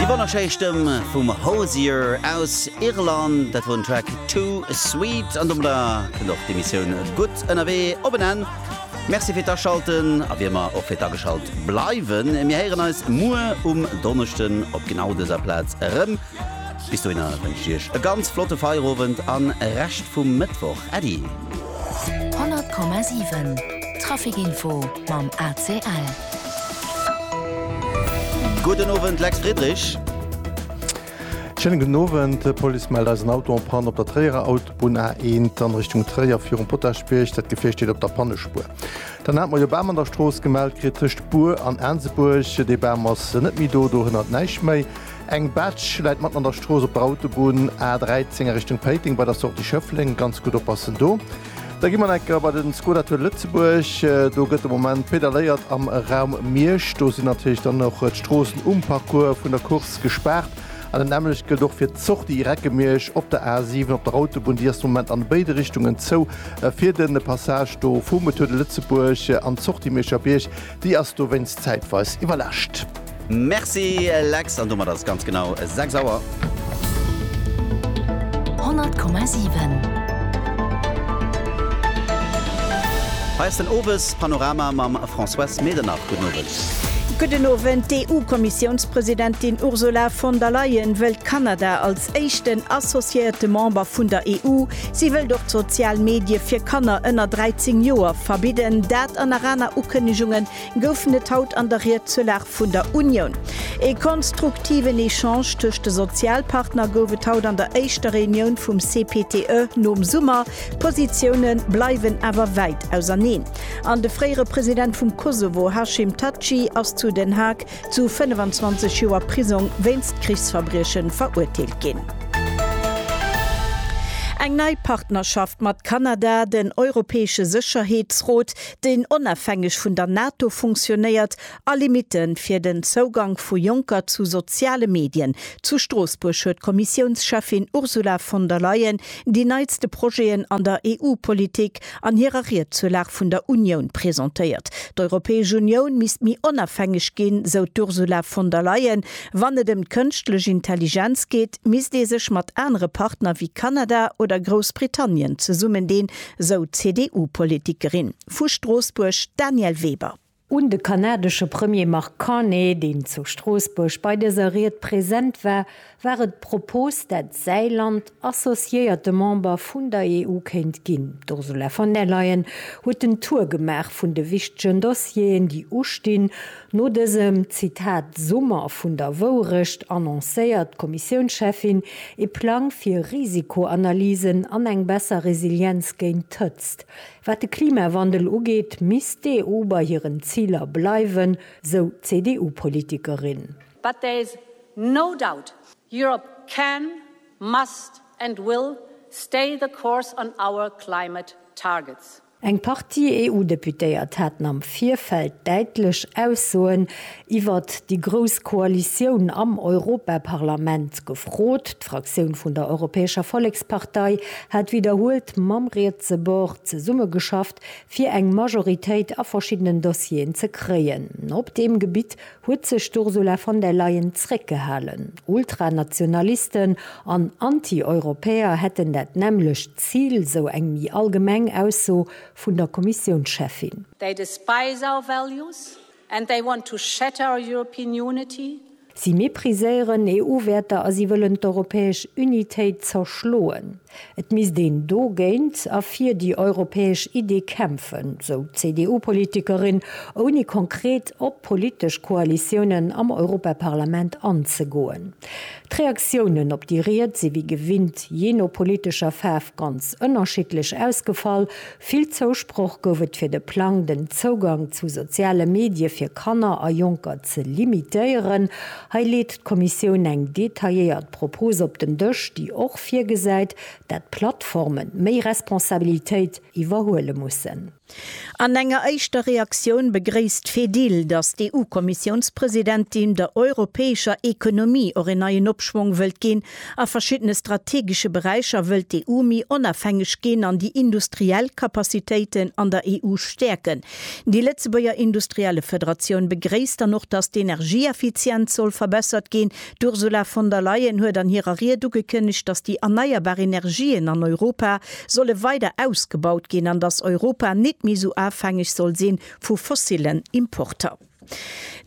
Déi wonnerschéi Stëmm vum Hozier aus Irland, dat wor den Track Too Sweet an domadder kënnt och d'Emissioun Gutt ënnerwee op en Enn. Merci fir d'Aschalten a wéi ëmmer och fir d'Ageschalt bleiwen. Mir héieren eis muer um Donneschden op genau dëser Plaz erëm. Bis dohinner wënscht iech e ganz flotte Feierowend an Rescht vum Mëttwoch. Äddi! 100,7 Traficinfo mam ACL. Gudden Owend Lex Friedrich. Schéinen gudden Owend. D'Police mellt eis en Auto en Panne op der Tréierer Autobunn A1 an Richtung Tréier virum Potaschbierg. Dat Gefier steet op der Pannespuer. Dann hat mer jo Bam an der Strooss gemellt kritt tëscht Bur an Aansebuerg. Dee Bam ass net méi do, do hënnert näischt méi. Eng Betsch läit matten an der Strooss op der Autobunn A 13 a Richtung Péiteng bei der Sortie Schëffleng. Ganz gutt oppassen do. Da gi mer enker bei den Skoda Tour Lëtzebuerg. Do gëtt de Moment pedaléiert am Raum Miersch. Do sinn natierlech dann och d'Stroossen um Parcours vun der Course gespaart. An dat nämmlecht gëllt och fir d'Sortie Reckemiersch op der A 7 op der Autobunn. Déi ass de Moment an béide Richtungen zou. Fir de Passage do vum Tour de Lëtzebuerg an d'Sortie Mierscher Bierg Déi ass dowéinst zäitweis iwwerläscht. Merci Lex, an domat ass et ganz genau 6 Auer. 100,7. Hei ass den Owes Panorama mam Françoise Medernach. Gudden Owend. Gudden Owend. D'EU-Kommissiounspresidentin Ursula von der Leyen wëllt Kanada als Als éischten associéierte Member vun der EU, si wëllt och d'sozial Medie fir Kanner ënner 13 Joer verbidden. Dat an nach aner Ukënnegunge goufen et haut an der Ried zur Lag vun der Unioun. Ee konstruktiven Echange tëscht de Sozialpartner gouf et haut an der éischter Reunioun vum CPTE nom Summer. D'Positioune bleiwen awer wäit auserneen an de fréiere President vum Kosovo Hashim Thaçi ass zu Den Haag zu 25 Joer Prisong wéinst Krichsverbriechen verurteelt ginn. Eng nei Partnerschaft mat Kanada, den Europäesche Sécherheetsrot, deen onafhängeg vun der NATO funktionéiert, a Limite fir den Zougank vu Jonker zu soziale Medien. Zu Stroossbuerg huet d'Kommissiounscheffin Ursula von der Leyen déi neitste Projeten an der EU-Politik an hirer Ried zur Lag vun der Unioun presentéiert. D'Europäesch Unioun misst méi onafhängeg ginn, sou d'Ursula von der Leyen. Wann et ëm d'kënschtlech Intelligenz geet, misst ee sech mat anere Partner wéi Kanada oder Groussbritannien zesummendeen, sou d'CDU-Politikerin vu Stroossbuerg, d'Danièle Weber. Un de kanadesche Premier Mark Carney, deen zu Stroossbuerg bei dëser Ried present war, war et d'Propos, dat säi Land associéierte Member vun der EU kéint ginn. D'Ursula von der Leyen huet en Tour gemaach vun de wichtegen Dossieren, déi ustinn. No dësem, Zitat, Summer vun der Wourecht annoncéiert d'Kommissiounscheffin ee Plang fir Risikoanalysen an eng besser Resilienz géint d'Hëtzt. Wat de Klimawandel ugeet, misst d'EU bei hiren Ziler bleiwen, sou d'CDU-Politikerin. But there is no doubt Europe can, must and will stay the course on our climate targets. Eng Partie EU-Deputéiert haten am Virfeld däitlech Aussoen iwwert déi grouss Koalitioun am Europaparlament gefrot. D'Fraktioun vun der Europäescher Vollekspartei hat widderhuelt mam rietse Bord zesummegeschafft, fir eng Majoritéit a verschiddenen Dossieren ze kréien. Op deem Gebitt huet sech d'Ursula von der Leyen zréckgehalen. Ultranationalisten an Anti-Europäer hätten dat nämmlecht Zil, sou eng méi allgemeng Ausso vun der Kommissiounscheffin. Déi de Spice Our Values And they want to shatter our European unity. Si mépriséieren EU-Wäerter a si wëllen d'europäesch Unitéit zerschloen. Et misst een dogéint a fir déi europäesch Idee kämpfen, sou d'CDU-Politikerin, ouni konkret op politesch Koalitiounen am Europaparlament anzegoen. D'Reaktiounen op déi Ried si wéi gewinnt jee no politescher Faarf ganz ënnerschiddlech ausgefall, Vill Zousproch gouf et fir de Plang, den Zougang zu soziale Medie fir Kanner a Jonker ze limitéieren. Hei leet d'Kommissioun eng detailléiert Propos op den Dësch, déi och virgesäit, dat d'Plattforme méi Responsabilitéit iwwerhuele mussen. An enger éischter Reaktioun begréisst d'Fedil, datt d'EU-Kommissiounspresidentin der europäescher Ekonomie och een neien Opschwong wëllt ginn, A verschiddene strategesche Beräicher wëllt d'EU méi onafhängeg ginn an déi industriell Capacitéiten an der EU stäerken. Déi Lëtzebuerger Industriellefederatioun begréisst dann och, datt d'Energieeffizienz soll verbessert ginn. D'Ursula von der Leyen huet an hirer Ried ugekënnegt, datt déi erneierbar Energien an Europa solle weider ausgebaut ginn an datt Europa nit méi esou afhängeg soll si vu fossilen Importer.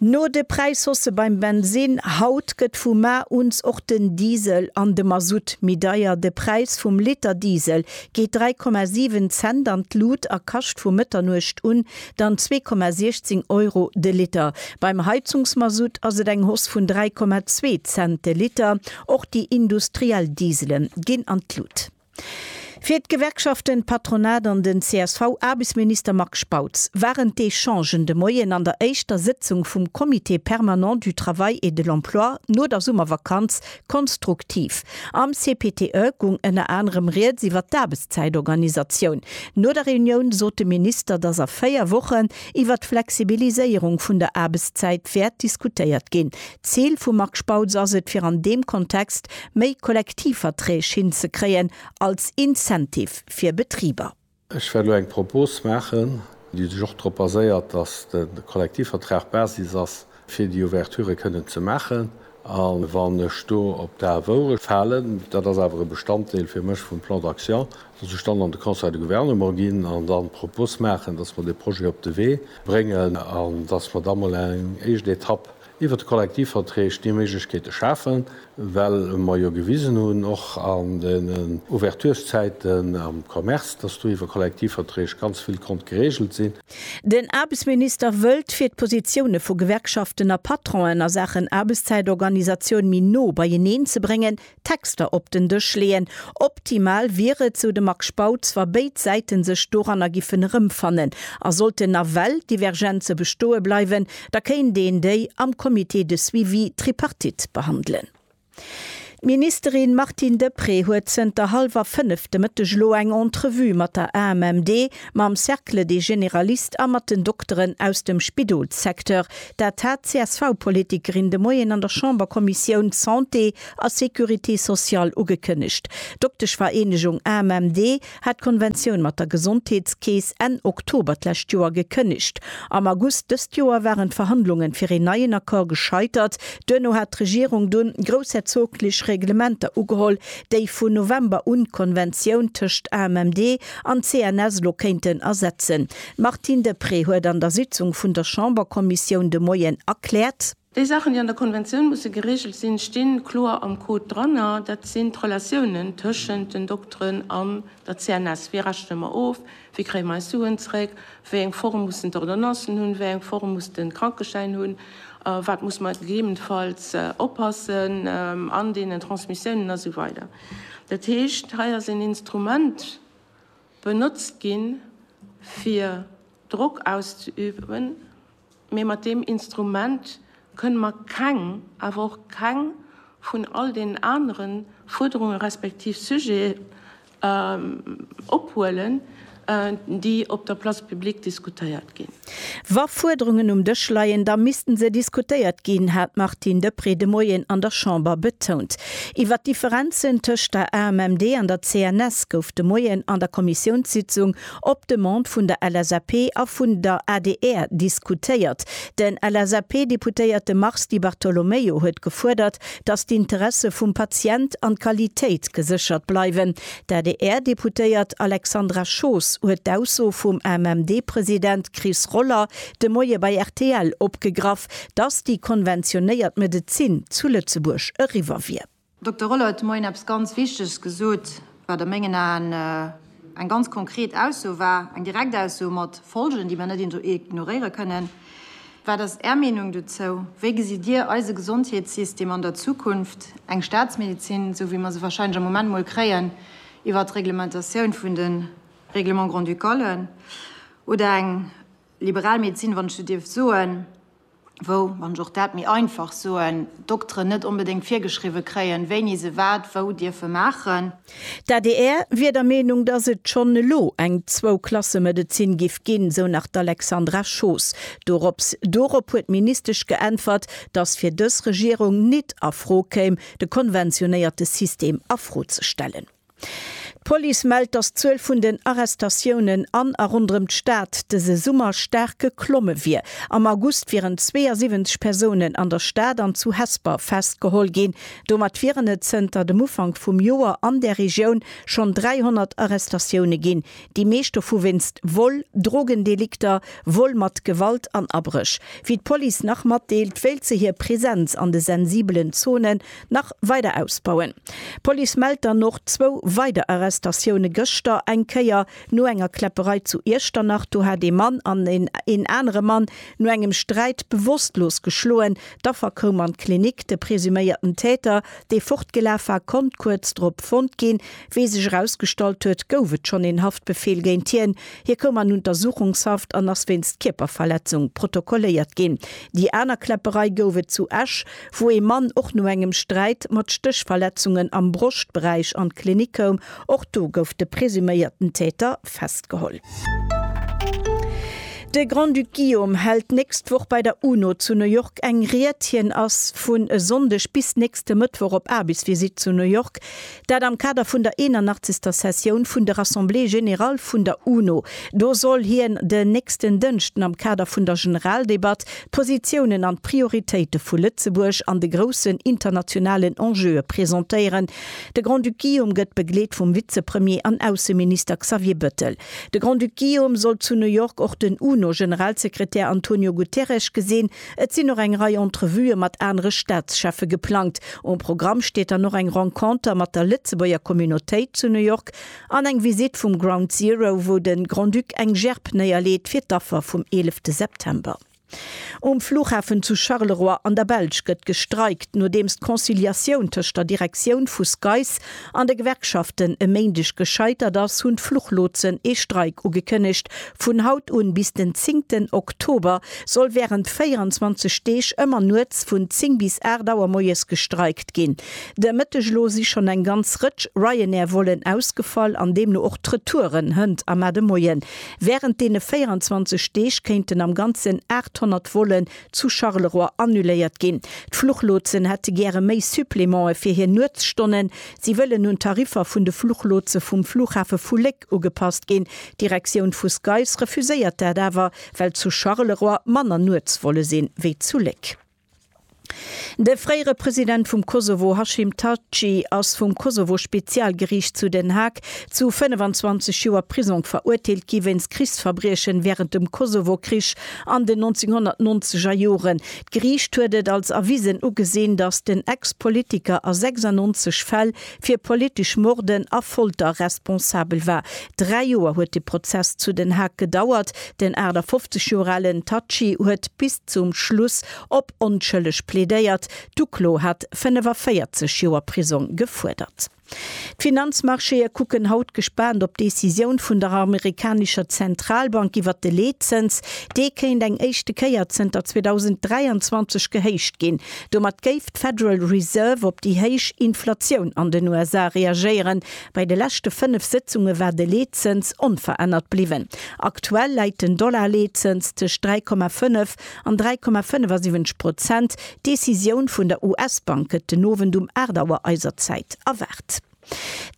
No de Präishausse beim Bensinn haut gëtt vu mar uns och den Diesel an de Masutt méi deier. De Präis vum Liter Diesel geet 3,7 Cent an d'Lut a kascht vu Mëtternuecht un dann 2,16 Euro de Liter. Beim Heizungsmasutt ass et eng Hausse vun 3,2 Cent de Liter. Och déi industriell Diesele ginn an d'Lut. Fir d'Gewerkschaften, d'Patronat an den CSV-Aarbechtsminister Marc Spautz waren d'Echangen de Moien an der éischter Sëtzung vum Comité permanent du travail et de l'emploi no der Summervakanz konstruktiv. Am CPTE gung ënner anerem Rieds iwwer d'Aarbechtszäitorganisatioun. No der Reunioun sot de Minister, datt a véier Wochen iwwer d'Flexibiliséierung vun der Aarbechtszäit wäert diskutéiert ginn. D'Zil vum Marc Spautz ass et, fir an deem Kontext méi Kollektivverträg hinzekréien als Incentive fir Betriber. Ech wäert elo eng Propos maachen, déi sech och drop baséiert, datt de Kollektivvertrag d'Basis ass, fir déi Ouverturë kënnen ze maachen. A wann ech do op d'A Woure falen, dat ass awer e Bestanddeel fir mech vum Plan d'action, datt ech dann an de Conseil de Gouvernement ginn an dann d'Propos maachen, datt mer dee Projet op de Wee bréngen an datt mer da mol eng éischt Etapp, iwwert de Kollektivverträg déi Méiglechkeete schafen, well mer jo gewisen hunn, och an den Ouverturszäiten am Commerce, dass do iwwer Kollektivverträg ganz vill konnt geregelt sinn. Den Aarbechtsminister wëllt, fir d'Positioune vu Gewerkschaften a Patronen a Saachen Aarbechtszäitorganisatioun méi no beieneen ze bréngen, Texter op den Dësch leeën. Optimal wier et, sou de Marc Spautz, wa béid Säite sech doranner giffen erëmfannen. A sollten nawell Divergenze bestoe bleiwen, da kéint een déi am Comité de suivi tripartite behandelen. D'Ministerin Martine Deprez huet zënter hallwer fënnef de Mëtteg elo eng Entrevue mat der AMMD, mam Cercle des généralistes a mat den Dokteren aus dem Spidolssecteur. Dat hat d'CSV-Politikerin de Moien an der Chamberkommissioun Santé a Sécurité sociale ugekënnegt. D'Dokteschvereenegung AMMD hat d'Konventioun mat der Gesondheetskeess Enn Oktober d'lescht Joer gekënnegt. Am August dëst Joer waren d'Verhandlungen fir een neien Accord gescheitert. Duerno hat d'Regierung dunn groussherzoglech Reglementer ugeholl, déi vun November un d'Konventioun tëscht AMMD an CNS elo kéinten ersetzen. D'Martine Deprez huet an der Sitzung vun der Chamberkommissioun de Moien erkläert, Déi Saachen, déi an der Konventioun musse geregelt sinn, sti kloer am Code dran. Dat sinn d'Relatiounen tëschent den Dokteren an der CNS. Wéi rechne mer of? Wéi kréie mer eis Suen zeréck? Wéi eng Form mussen d'Ordonnancen hunn? Wéi eng Form muss de Krankeschäin hunn? Op wat muss mer gegebenfalls oppassen an deenen Transmissiounen? A sou weider Dat heescht, hei ass een Instrument benotzt ginn, fir Drock auszeüben. Mee mat deem Instrument kënne mer keng, awer och keng vun all deenen anere Fuerderunge respektiv Sujete ophuelen, déi op der Place publique diskutéiert ginn. Wa Fuerderungen um Dësch leien, da misste se diskutéiert ginn, hat d'Martine Deprez de Moien an der Chamber betount. Iwwer d'Differenzen tëscht der AMMD an der CNS gouf de Moien an der Kommissiounssitzung Op Demande vun der LSAP a vun der adr diskutéiert. De LSAP-Deputéierte Mars Di Bartolomeo huet gefuerdert, datt d'Interesse vum Patient an d'Qualitéit geséchert bleiwen. D'ADR-Deputéiert Alexandra Schoos huet d'Ausso vum AMMD-President Chris Roller de Moie bei rtl opgegraff, datt déi konventionéiert Medezin zu Lëtzebuerg eriwwer wier. Dokter Rolle huet de Moien eppes ganz Wichteges gesot, wat a mengen Aen eng ganz konkret Ausso war, eng direkt Ausso mat Folgen, déi mer net ignoréiere kënnen. Wat ass Är Meenung dozou? Wéi gesitt Dir eise Gesondheetssystem an der Zukunft? Eng Staatsmedezin, esou wéi mer se warscheinlech am Moment mol kréien iwwert d'Reglementatioun vun de Règlements grand-ducales, oder eng liberal Medezin, wann ech esou dierf soen, wou, wann ech och dat méi einfach soen, d'Dokteren net onbedéngt virgeschriwwe kréien, wéini se wat wou dierfe maachen. D'adr wier der Meenung, datt et schonn elo eng Zwou-Klasse-Medezin giff ginn, esou nach d'Alexandra Schoos. Dorops dorop huet d'Ministesch geäntwert, datt fir dës Regierung nit a Fro kéim, de konventionéierte System a Fro ze stellen. D'Police mellt, dass d'Zuel vun den Arrestatiounen an a ronderëm d'Stad dëse Summer staark geklomme wier. Am August wieren 72 Persounen an der Stad an zu Hesper festgeholl ginn. Domat wieren et zënter dem Ufank vum Joer an där Regioun schonn 300 Arrestatioune ginn, déi meescht dovu wéinst Vol, Drogendelikter, Vol mat Gewalt an Abréch. Wéi d'Police nach matdeelt, wéilt se hir Presenz an de sensibelen Zonen nach weider ausbauen. D'Police mellt dann och zwou weider Arrestatioune gëschter, eng Kéier no enger Kläpperei zu Iechternach, do hat ee Mann an een anere Mann no engem Sträit bewosstlos geschloen. D'Affer koum an d'Klinik. De presuméierten Täter, dee fortgelaf war, konnt kuerz drop fonnt ginn. Wéi sech erausgestallt huet, gouf et schonn een Haftbefeel géint hien. Hie koum an Untersuchungshaft an ass wéinst Kierperverletzung protokolléiert ginn. Déi aner Kläpperei gouf et zu Esch. wou ee Mann och no engem Sträit mat Stéchverletzungen am Broschtberäich an d'Klinik koum. Och do gouf de presuméierten Täter festgeholl. De Grand-Duc Guillaume hält d'nächst Woch bei der UNO zu New York eng Ried. Hien ass vun e Sonndeg bis nächste Mëttwoch op Aarbechtsvisitt zu New York. Dat am Kader vun der 81. Sessioun vun der Assemblée générale vun der UNO. Do soll hien den nächsten Dënschden am Kader vun der Generaldebatt d'Positiounen an d'Prioritéite vu Lëtzebuerg an de groussen internationalen Enjeue presentéieren. De Grand-Duc Guillaume gëtt begleet vum Vizepremier an Ausseminister Xavier Bëttel. De Grand-Duc Guillaume soll zu New York och den UNO-Generalsekretär Antonio Guterres gesinn. Et sinn och eng Rei Entrevuë mat anere Staatscheffe geplangt. Um Programm steet dann och eng Renconter mat der Lëtzebuerger Communautéit zu New York an eng Visitt vum Ground Zero, wou de Grand-Duc eng Gerb néierleet fir d'Affer vum 11 September. Um Flughafen zu Charleroi an der Belsch gëtt gestreikt, nodeems d'Conciliatioun tëscht der Direktioun vu SCAIS An de Gewerkschaften e Méindeg gescheitert ass, hunn d'Fluchlotsen ee Streik ugekënnegt. Vun haut un bis den zéngten Oktober soll wärend 24 Deeg ëmmer nuets vun 10 bis 8 Auer moies gestreikt ginn. De Mëtteg elo si schonn eng ganz Rëtsch Ryanair-Vollen ausgefall an deemno och d'Retouren. Hënt a Mar de Moien. Wärend deene 24 Deeg kéinten am Ganzen 800 Volle zu Charleroi annuléiert ginn. D'Fluchlotsen hätte gäre méi Supplemente fir hir Nuetsstonnen. Si wëllen un d'Tariffer vun de Fluchlotse vum Flughafe vu Léck ugepasst ginn. D'Direktioun vu SCAIS refuséiert dat awer, well zu Charleroi manner Nuetsvolle si wéi zu Léck. De fréiere President vum Kosovo Hashim Thaçi ass vum Kosovo-Spezialgeriicht zu Den Haag zu 25 Joer Prisong verurteelt gi wéinst Krichsverbriechen wärend dem Kosovo-Krich An den 1990 er Joren. D'Geriicht huet et als erwisen ugesinn, datt den Ex-Politiker a 96 Fäll fir politesch Morden a Folter responsabel war. Dräi Joer huet de Prozess zu Den Haag gedauert. Den 58 Joer alen Thaçi huet bis zum Schluss op onschëlleg plädéiert. D'Uklo hat 45 Joer Prisong gefuerdert. D'Finanzmarchéë kucken haut gespaant op d'Decisioun vun der amerikanescher Zentralbank iwwer de Leetzëns. Dee kéint eng éischte Kéier zënter 2023 gehéicht ginn. Domat géif d'Federal Reserve op déi héich Inflatioun an den USA reagéieren. Bei de leschte fënnef Sëtzunge war de Leetzëns onverännert bliwwen. Aktuell läit den Dollar-Leetzëns tëscht 3,5 An 3,75 Prozent. D'Decisioun vun der US-Bank gëtt den Owend um 8 Auer eiser Zäit erwaart.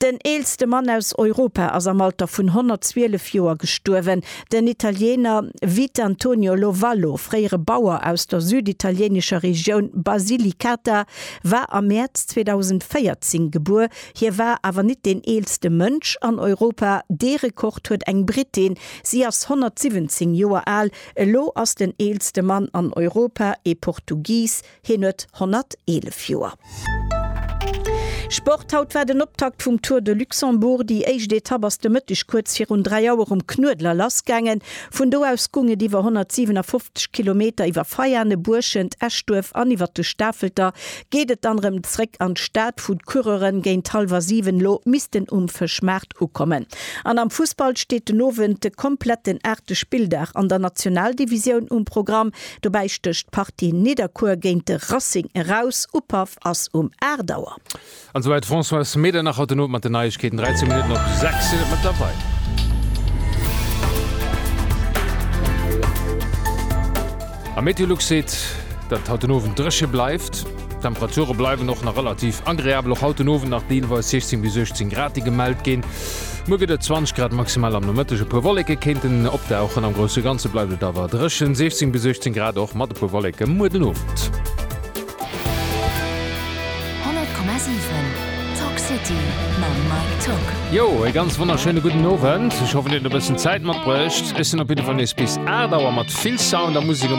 Den eelste Mann aus Europa ass am Alter vun 112 Joer gestuerwen. Den Italiener Vitantonio Lovallo, fréiere Bauer aus der süditalieenescher Regioun Basilicata, war am Mäerz 2014 gebuer. Hie war awer nit deen eelste Mënsch an Europa, dee Rekord huet eng Brittin. Si ass 117 Joer al. Elo ass den eelste Mann an Europa ee Portugies, hien huet 111 Joer. Sport, Haut war den Optakt vum Tour de Luxembourg. Déi éischt Etapp ass de Mëtteg kuerz virun 3 Auer um Knuedler lassgaangen. Vun do aus goung et iwwer 157 Kilometer iwwer Veiane, Buerschent, Eschduerf an iwwer de Stafelter geet et dann erëm zréck an d'Stad, wou d'Coureuren géint hallwer 7 lo missten um Fëschmaart Ukommen. An am Fussball steet den Owend de kompletten aachte Spilldag an der Nationaldivisioun um Programm. Dobäi stécht d'Partie Nidderkuer géint de Racing eraus. Upaff ass um 8 Auer. An souwäit d'Françoise Medernach haut den Owend mat den Neiegkeeten. 13 Minutten op 6 sinn et mëttlerweil. A Meteolux seet, datt et haut den Owend dréche bleift. D'Temperature bleiwen och nach relativ agreabel, och haut den Owend nach deelweis 16 bis 18 Grad, déi gemellt ginn. Muer gëtt et 20 Grad maximal, am Nomëtteg e puer Wolleke kéinten opdauchen. Am grousse Ganze bleift et awer dréchen, 16 bis 18 Grad, och mat e puer Wolleke muer den Owend. 100,7 Talk City mam Mike Tock. Jo, ee ganz wonnerschéine gudden Owend. Ech hoffen, dir hutt e bëssen Zäit matbruecht. Ech sinn op jidde Fall nees bis 8 Auer mat vill Sound a Musek am.